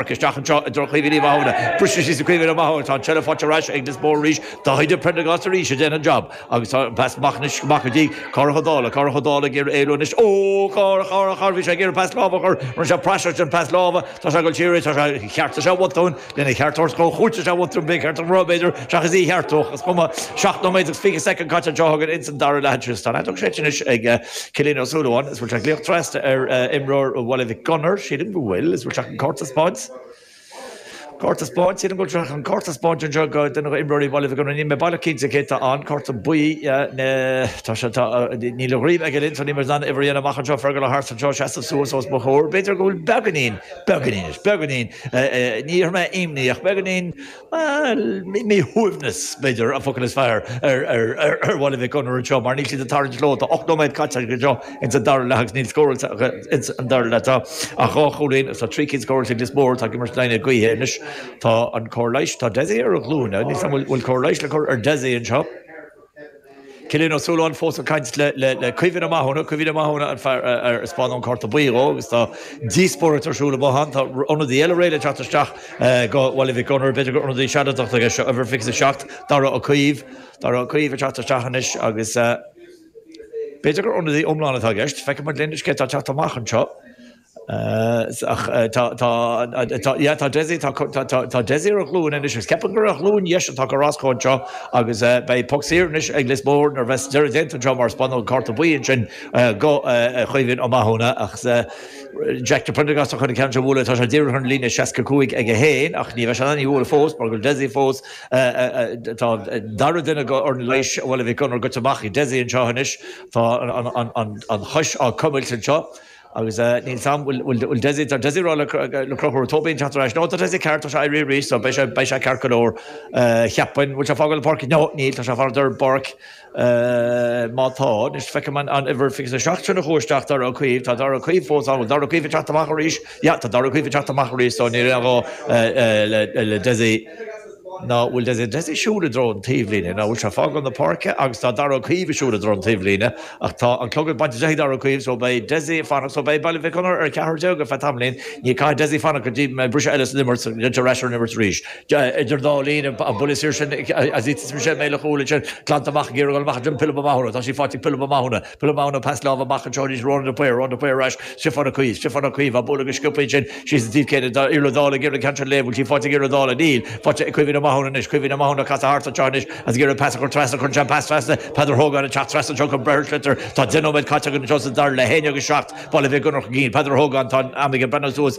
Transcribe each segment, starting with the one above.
Amharc isteach anseo i dtreo Chaoimhín Uí Mhathúna. Bristear síos ar Caoimhín Ó Mathúna. Tá an tseilbh faighte ar ais ag Lios Mór arís. Jack Prendergast arís a déanann an jab. Agus tá an pas amach anois amach go dtí Cárthach Ó Dálaigh. Cárthach Ó Dálaigh ag iarraidh éalú anois. Ó! Cár! Cár! Cár! Bhí sé ag iarraidh pas láimhe a chur. Rinne sé praiseach den pas láimhe. Tá sé ag dul siar arís. Tá sé cheart is ea bhotúin. Lena cheart tabhairt dhó chúirt is ea bhotún bréag cheart a rá, b'fhéidir, seachas í a cheartú. Ach is cuma. Seacht nóiméad agus 20 soicind caite anseo againn ins an dara leath. Tristan Addomcash anois ag. Cillian Ó Súilleabháin, Is bhfuil sé glaoch trasna ar imreoir Bhaile Mhic Gonair, sílim go bhfuil. Is bhfuil sé chun cárta a thaispeáint. Cárta a thaispeáint, sílim go bhfuil sé chun cárta a thaispeáint anseo do dhuine d'imreoirí Bhaile Mhic Gonair. Níl mé baileach cinnte cé tá ann. Cárta buí, yeah, tá sé, tá, níl a dhroim aige linn, so níl muid in ann uimhir a dhéanamh amach anseo. Fergal O'Hart anseo ag seasamh suas os mo chomhair. B'fhéidir go bhfuil beagainín, beagainín, is beagainín, ní mé imní ach beagainín. Bhuel, míshuaimhneas, b'fhéidir, an focal is fearr ar Bhaile Mhic Gonair anseo mar níl siad ag tarraingt leo. Tá ocht nóiméad caite acu anseo ins an dara leath agus níl scóráilte acu ins an dara leath. Ach dhá chúilín agus tá trí cinn scóráilte ag Lios Mór. Atá ag imirt in aghaidh na gaoithe anois. Tá an cóir leighis. Tá Dessie ar a ghlúine. Níl 's agam an bhfuil cóir leighis le cur ar Dessie anseo. Cillian Ó Súilleabháin fós ag caint le Caoimhín Ó Mathúna, Caoimhín Ó Mathúna an fear ar spáineadh an cárta buí dhó agus tá díospóireacht ar siúl i mbothán. Tá ionadaí eile réidh le teacht isteach go Baile Mhic Gunnair. B'fhéidir gur ionadaí sealadach atá i gceist seo, uimhir a fiche is a seacht, Darragh Ó Caoimh. Darragh Ó Caoimh ag teacht isteach anois agus b'fhéidir gur ionadaí iomlán atá i gceist. Feicfimid linn anois cé atá ag teacht amach anseo. Tá Desi ar a ghlúin anois agus ceapaim gur ar a ghlúin dheis atá gortaithe anseo agus beidh poc saor anois ag Lios Mór nuair a bheas deireadh déanta anseo mar spáineadh an cárta buí ansin go Chaoimhín Ó Mathúna ach Jack Prendergast atá chun an ceann seo a bhualadh. Tá sé díreach ar an líne 65 aige féin ach ní bheidh sé in ann í a bhualadh fós mar go bhfuil Desi fós Tá an dara duine go fhoireann leighis Bhaile Mhic Gonair goite amach ag Desi anseo anois. Tá an chois á cuimilt anseo. Agus níl 's agam, bhuel Dessie, tá Dessie ag rá le Conchúr Tóibín teacht ar ais, no tá Dessie ceart, tá sé ag éirí arís, so beidh sé, beidh sé ceart go leor, cheapfainn, bhfuil sé ag fágáil na páirce? No, níl, tá sé ag fanacht ar an bpáirc, má tá, anois feicim an, an uimhir 27 sin a chuaigh isteach, Dara Caoimh, tá Dara Caoimh fós ann, bhfuil Dara Caoimh ag teacht amach arís? Yeah, tá Dara Caoimh ag teacht amach arís, so níl aon ghá le, le Dessie. An bhfuil Dessie Dessie ag siúl i dtreo an taobhlíne? An bhfuil sé ag fágáil na páirce agus tá Darragh Ó Caoimh ag siúl i dtreo an taobhlíne ach tá an clog á bhaint de ag Darragh Ó Caoimh so beidh Dessie ag fanacht so beidh Baile Mhic Gunnair ar 14 ar feadh tamaillín. Ní caithfidh Dessie fanacht go dtí briseadh eile san imirt go dtéann sé ar ais ar an imirt arís. Idir an dá linn an buille saor sin Azitis Michelle Mhaoil a chúl ansin glanta amach ag iarraidh a dhul amach go Pilib Ó Mathúna. Tá sí faighte ag Pilib Ó Mathúna. Philip Maughan an pas láimhe amach anseo arís Ronan De Paor, Ronan De Paor ar ais, Stiofán Ó Cuív, Stiofán Ó Cuív, an bualadh go sciobtha ansin síos an taobh céanna do Iarla Dála ag iarraidh an ceann seo a léamh, bhfuil sí faighte ag Iarla Dála, níl, faighte ag Caoimhín Ó Mathúna anois, Caoimhín Ó Mathúna ag casadh thart anseo anois agus ag iarraidh pas a chur trasna, cuireann sé an pas trasna, Peadar Hogan ag teacht trasna anseo chun breith ar an sliotar, tá deich nóiméad caite againn anseo sa dara leath, a haon agus a seacht, Baile Mhic Gonair chun cinn, Peadar Hogan, tá an am aige breathnú suas,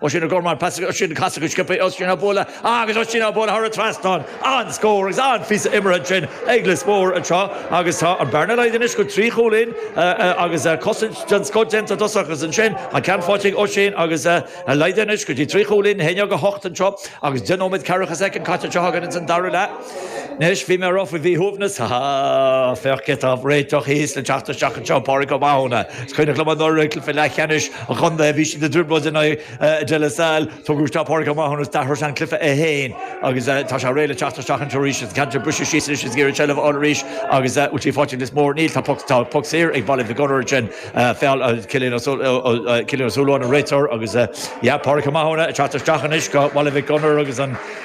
Oisín O'Gorman an pas sin casta go sciobtha ag Oisín á bualadh agus Oisín á bualadh thar an trasnán. An-scór agus an-phíosa imeartha ansin ag Lios Mór anseo agus tá an bhearna laghdaithe anois go trí chúilín agus cosaint den scoth déanta i dtosach agus ansin an ceann faighte ag Oisín agus laghdaithe anois go dtí trí chúilín. 11-8 anseo agus deich nóiméad ceathracha soicind caite anseo againn agus ins an dara leath. Anois bhí mé rough faoi mhíshuaimhneas, ha ha. Féach cé atá á réiteach thíos le teacht isteach anseo, Pádraig Ó Mathúna. Is cuimhin liom anuraidh i gcluiche leathcheannais an chontae bhí siad i dtrioblóid in aghaidh De La Salle, tugadh isteach Pádraig Ó Mathúna agus d'athraigh sé an cluiche é féin agus tá sé réidh le teacht isteach anseo arís. An ceann sin briste síos anois is ag iarraidh seilbh a fháil arís agus bhfuil sé faighte ag Lios Mór. Níl, tá puc, tá puc saor ag Baile Mhic Gonair ansin, feall, Cillian Ó Suilleabháin an réiteoir agus yeah, Pádraig Ó Mathúna ag teacht isteach anois do Bhaile Mhic Gonair agus an,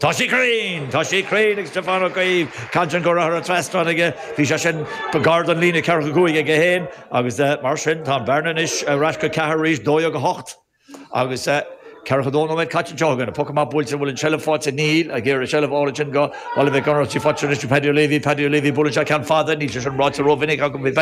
Tá sé cruinn! Tá sé cruinn ag Stiofán Ó Caoimh, ceann eile curtha thar an trasnán aige. Bhí sé sin gar don líne ceathracha cúig aige féin agus mar sin tá an bhearna anois ar ais go ceathair arís, 12-8 agus ceathracha dó nóiméad caite anseo againn. An poc amach buailte, an bhfuil an tseilbh faighte? Níl, ag iarraidh an tseilbh a fháil ansin do Bhaile Mhic Gonair, tugtha anois do Paddy O'Leary, Paddy O'Leary, buaileann sé ceann fada, níl sé sin ráite rómhinic agam faoi Phaddy.